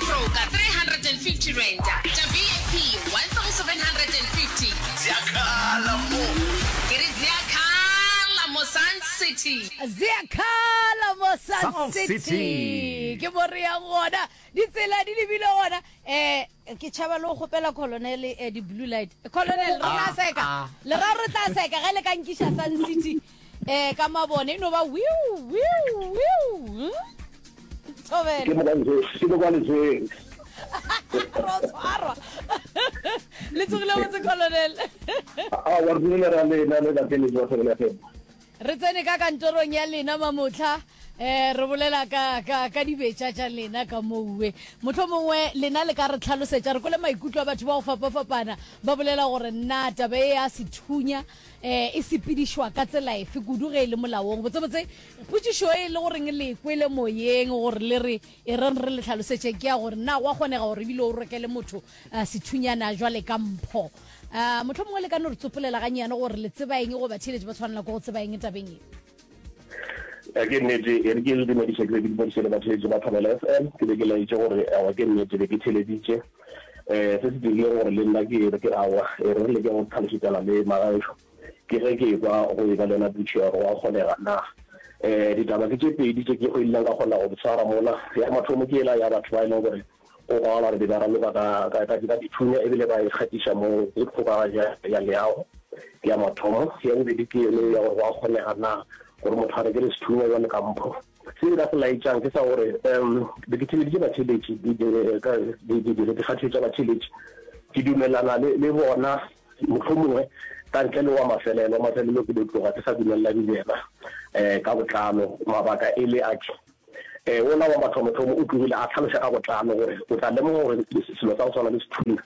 Broker, R350, tša VIP, R1,750. Zea khala mo. Ke re zea khala mo Sun City. Zea khala mo Sun, Sun City. City. Ke mo re yang gona. Ditsela di lebile gona. Eh, ke tšhaba le go kgopela Colonel eh, di-blue light. Colonel, re tla Ah, seka. ah. Leraro re tla seka ge le ka nkiša Sun City. Eh ka mabone e no ba wiu wiu wiu. Hm? Thobela. Ke mo kwa lejeng. Ke mo kwa lejeng. Ro tshwarwa. Le tsogile botse Colonel. Ah, wa rulele ra lena le la tele jwa sebele fela. Re tsene ka kantorong ya lena mamotlha eh re bolela ka ka ka dibetša tša lena ka mouwe motlho mongwe lena le ka re tlhalosetša re kole maikutlo a batho ba go fapafapana ba bolela gore na taba e ya sethunya um e sepedišwa ka tsela efe kudu ge e le molaong botsebotse potsišo e le goreng le kwele moyeng gore le re e reng re le tlhalosetše ke ya gore na wa kgonega gore ebile o rokele motho uh, sethunyana jwale ka mpho um motlho mongwe le ka no re tsopolela ganyane gore le tseba eng goba theeletše ba tshwanela ko go tseba eng tabeng e a ke nnete e re ke le dumediše ke be ke dumediše le batheletše ba thobela f m ke be ke laetše gore awa ke nnete be ke theleditše Eh, se se dirile gore le nna ke re ke awa, e re re leke go tlhalosetšana le magaešo ke ge ke ekwa go e ba le yona dutše ya gore wa kgonega na. Eh, ditaba ke tše pedi tše ke go ileng ka kgona go di tshwara mola. Ya mathomo ke ela ya batho ba e leng gore go kwagala re be ba raloka ka, ka, ka, ka dithunya e bile ba e kgatiša mo le kgokaganyo ya, ya leago ke ya mathomo. Ya bobedi ke yeno ya gore wa kgonega na gore motho a rekele sethunya jwale ka mpho. Se nka se laetšang ke sa gore um be ke theleditše batheletši dikgathišo tša batheletši. Ke dumelana le, le bona mohlomongwe ka ntle le wa mafelelo. Wa mafelelo ke do tloga ke sa dumelelane le yena um ka botlalo. Mabaka e le ake, um wola wa mathomothomo o tlogile a tlhaloša ka botlalo gore o tla lemoga gore selo sa go swana le sethunya,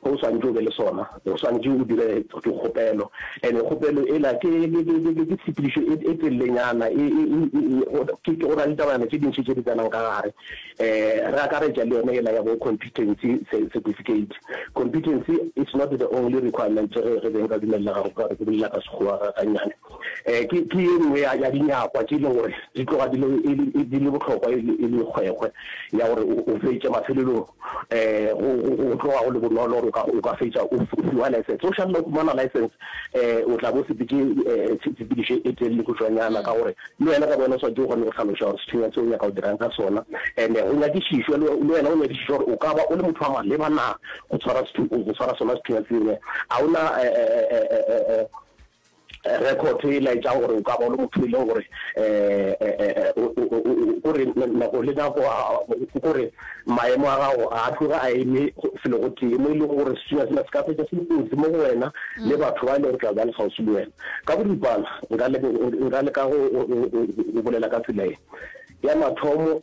Ge o swanetše o be le sona, o swanetše o dire dikgopelo. And kgopelo ela ke, ke, ke, ke, ke, ke tshepedišo e, e telelenyana, e, e, e, e, e, go, ke, ke, go na le tabayana tše dintši tše di tsenang ka gare. Um re akaretša le yona ela ya bo competency ce, certificate. Competency is not the only requirement ge re beng ra dumelelaga go ka re ke bolela ka Sekgowa ga, gannyane. um ke ke ye nngwe ya ya dinyakwa tše e leng gore di tloga di le e le di le bohlokwa e le e le kgwekgwe ya gore o o fetše mafelelong um go go go tloga go le bonolo gore o ka o ka fetša o f- o fiwa license o šalela o fumana license um o tla bo sepetse um tshe- tshepedišo e telele khutšwanyana ka gore le wena ka bona o swantse o kgone go tlhaloša gore sethunya tse o nyaka o dirang ka sona and go nyakišišwa le le wena o nyakišišwa gore o ka ba o le motho wa maleba na go tshwara sethu- go tshwara sona sethunya sene a o na um Rekhoto e laetša gore o ka ba o le motho e lego gore ko re nako le nako ko re maemo a gago ga a tloge a eme felo go tee mo e lego gore setshunya sena se ka fetša se le kotsi mo go wena le batho ba e lego tla ba le kgauswi le wena. Ka boripana nka leka go bolela ka tsela e ya mathomo.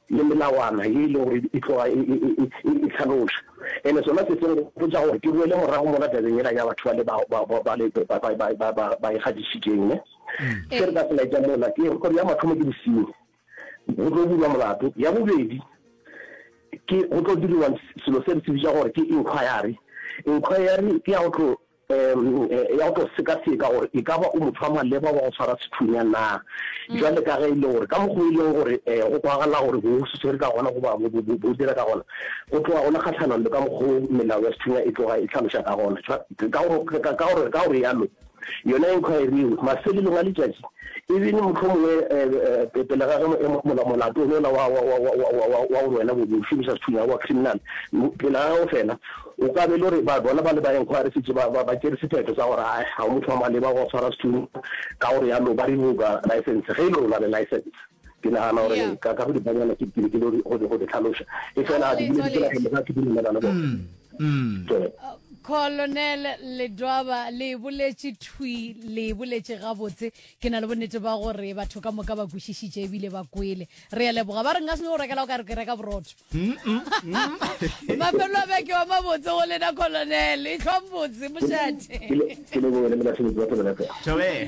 Le melawana ye e lego gore e tloga e hlaloša. And sona se se nkgopotša gore ke boele morago mola tabeng yela ya batho bale ba ba ikgadišitšeng. Ne se re ka se laetša mola ke gore ya mathomo ke bosenyi, go tlo bulwa molato. Ya bobedi ke go tlo diriwa selo se re se bitša gore ke inquiry. Inquiry ke ya go tlo. ya go tlo sekaseka gore e ka ba o motho wa maleba wa go tshwara sethunya na, bjale ka ge e le gore ka mokgwa o e leng gore go kwagala gore bo se swere ka gona goba bo dira ka gona go tloga go le kgahlanong le ka mokgwa o melao ya sethunya e tloga e hlaloša ka gona. Ka go realo, yona inquiry eo mafelelong a letšatši e bene mohlomongwe pele ga ge molato o yola wa gore wena o šomiša sethunya wa criminal pele ga ge o fela, O ka be e le gore ba bona ba le ba enkgwaresitše ba ba ba tšere sephetho sa gore a ga o motho wa maleba go swara sethunya, ka go realo ba revoka laesense ge e le gore o na le laesense. Ke nagana gore Yeah. ka ka go dipanyana ke ke lekile go di- go di- go di tlhaloša. E fela Aowe, di bile di tswaletse. tsena ga ke dumelana le bona. Tswele. Colonel Ledwaba le e boletše thwi, le e boletše gabotse. Ke na le bonnete ba gore batho ka moka ba kwešišitše ebile ba kwele. Re a leboga. Ba re nka se no rekela o ka re ke reka borotho. Mafelo a beke wa mabotse go lena Colonel. E tlhwang botse mošate. Ke leboge le le basebetsi ba Pelo ya Phepo. Thabela.